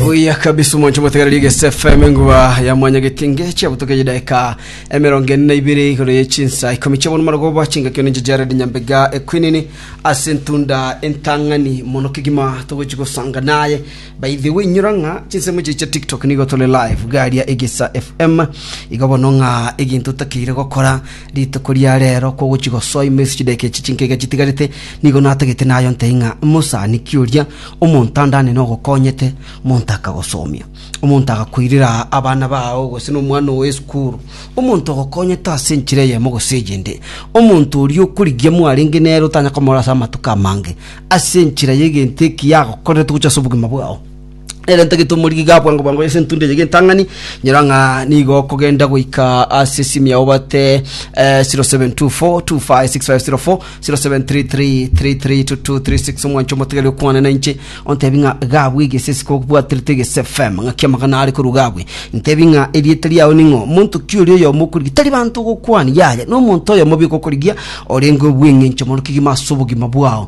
Oya kabisa omonche motegereri egese FM engua ya mwanya getinge chiabutoke chidaika emerongo ene na ibere igoro ye chinsa ikomi chiabono marogo bwa chingakio ninche Jared Nyambega ekwinini ase ntunda entang'ani mono kegima togochi gosanga naye by the way nyora ng'a chinsemo chiche chia TikTok nigo tore live garia egesa FM igo bono ng'a eginto otakeire gokora Rituko ria reero kw'ogochia gosoa ime ase chidaeka echi chinkaiga chitigarete, nigo natagete nayonte ng'a mosani kioria omonto andane nogokonyete, omonto akagosomia. Omonto agakoirera abana bao gose nomwana oo esukuru, omonto ogokonyete ase enchera eyemo gose eyende, omonto oria okorigia mwarenge nere otanya komorora ase amatuko amange, ase enchera y'egento ekiya agokorerete gochia ase obogima bwao. Erenta getumori giga bwango bwango ase entunda eye gentang'ani nyora ng'a nigo okogenda goika ase esimu yao bate eh, 0724256504 0733332236 omwancho omotegeri okwane na inche ontebi ng'a gabwe egese esiko obwaterete egese fm ng'aki amagana are korwa gabwe ntebi ng'a erieta riao ning'o monto ki oria oyomo okorigia tari banto ogokwani yaya nomonto oyomo biko okorigia orenge obweng'encho mono kegima ase obogima bwao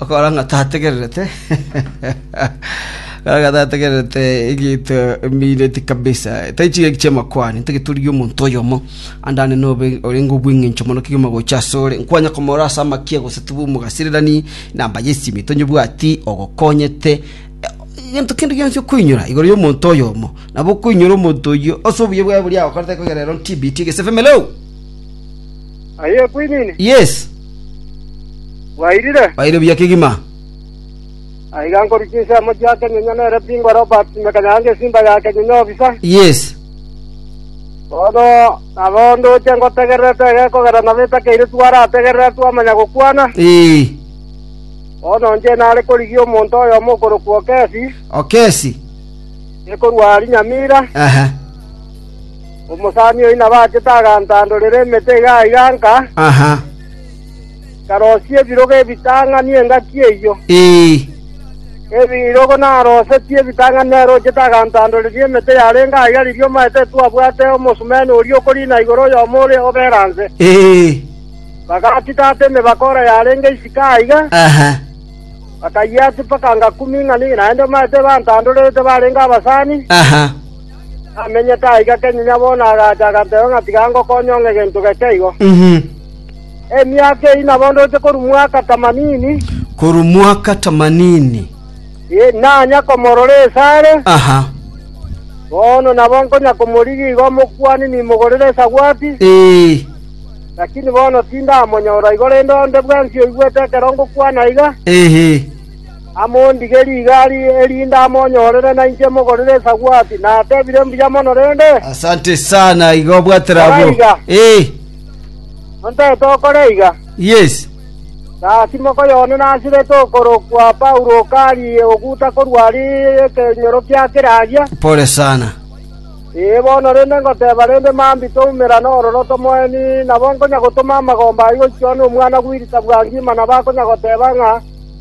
Okorora ng'a tategererete, okorora ng'a tategererete egento embiireti kabisa, tari chigaki chi'amakwani, ntageturigia omonto oyomo andane nobe orenge obweng'encho mono kegima gocha asore, nkwanye komorora ase amakia gose tobwe omogasirerani, namba y'esimi tonyebwati, ogokonyete, egento kende gionsi okoinyora igoro y'omonto oyomo, nabo okoinyora omonto oyio ase obuya bwaye boria agokorete ekero ere on TBT gese family. Aye ekwainine? Yes. Bwairire? Baire buya kegima. Aiga nkorwa chinsemo chia kenyonya nere bingo Robert Mekanyanga esimba ya kenyonya obisa. Yes. Bono nabo ndoche ngotegererete egekogera nabo etakeire twarategerera twamanya gokwana. Ee. Bono inche nare korigia omonto oyomo okorokwa Okesi, Okesi. ekorwa Rinyamira. Aha. Omosani oyio nabachete agantandorera emete iga aiga nka, nkarosia ebirogo ebitang'ani engaki eyio. Ebirogo narosetie ebitang'ani nerochete agantandoreria emete yarenge aiga riria omaete etwabwate omosumeno oria okorina igoro oyomo ore oberanse. Bagachitata emebakora yarenge isiko aiga, bakayia chipaka ngakumi ing'ani, naende omaete ebantandorerete barenge abasani, namenyete aiga kenyinya bono agacha agateba ng'a tiga ngokonye ong'e gento geke igo. Emiaka eyio nabondorete korwa mwaka tamanini, Korwa mwaka tamanini. eh, nanya komorora esare. Aha. Bono nabo nkonya komorigia igo omokuani nimogorere esagwati, Eh. lakini bono tindamonyora igo rende onde bwensi oigwete ekero ngokwana aiga. Ehe. Amondige rigari, erinde amonyorere nainche mogorere esagwati. Natebire, Mbuya mono rende. Asante sana, iga obwatera abwo. Kora iga. Eh, Ontete okore iga. yes. Gasi mokoyone nasirete okorokwa Paulo okari oguta korwa ari ekenyoro kia keragia. Pole sana. Ee bono rende ngoteba rende mambi toumera nororo tomoeni nabo nkonya gotoma amagomba aye gochia one omwana gwirita bwa ngima nabo akonya goteba ng'a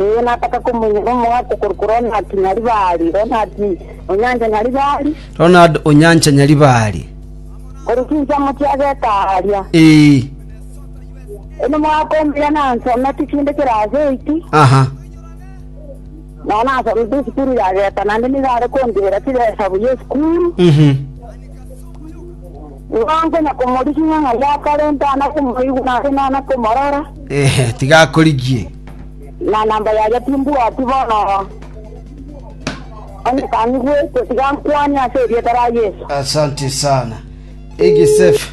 Ee, nataka komenya nomogati korwa ku Ronald Nyaribari. Ronald Onyancha Nyaribari. Ronald Onyancha Nyaribari. Korwa chinsa mochie ageka aria. Ee. Eno mwaka omuya nansomete chinde kirasi eit. Aha. Na nasomete esukuru ya geta naende nigo are kondibera chibesa buya esukuru. Mhm. Bwango na komorigia ng'a yakarenta ana komoigwa na ase nana komorora, Ehe, tiga akorigie. na namba yaria timbwati bono. Onye kang'igwete, tiga nkwanie ase erieta ria Yeso. Asante sana. Egisefu.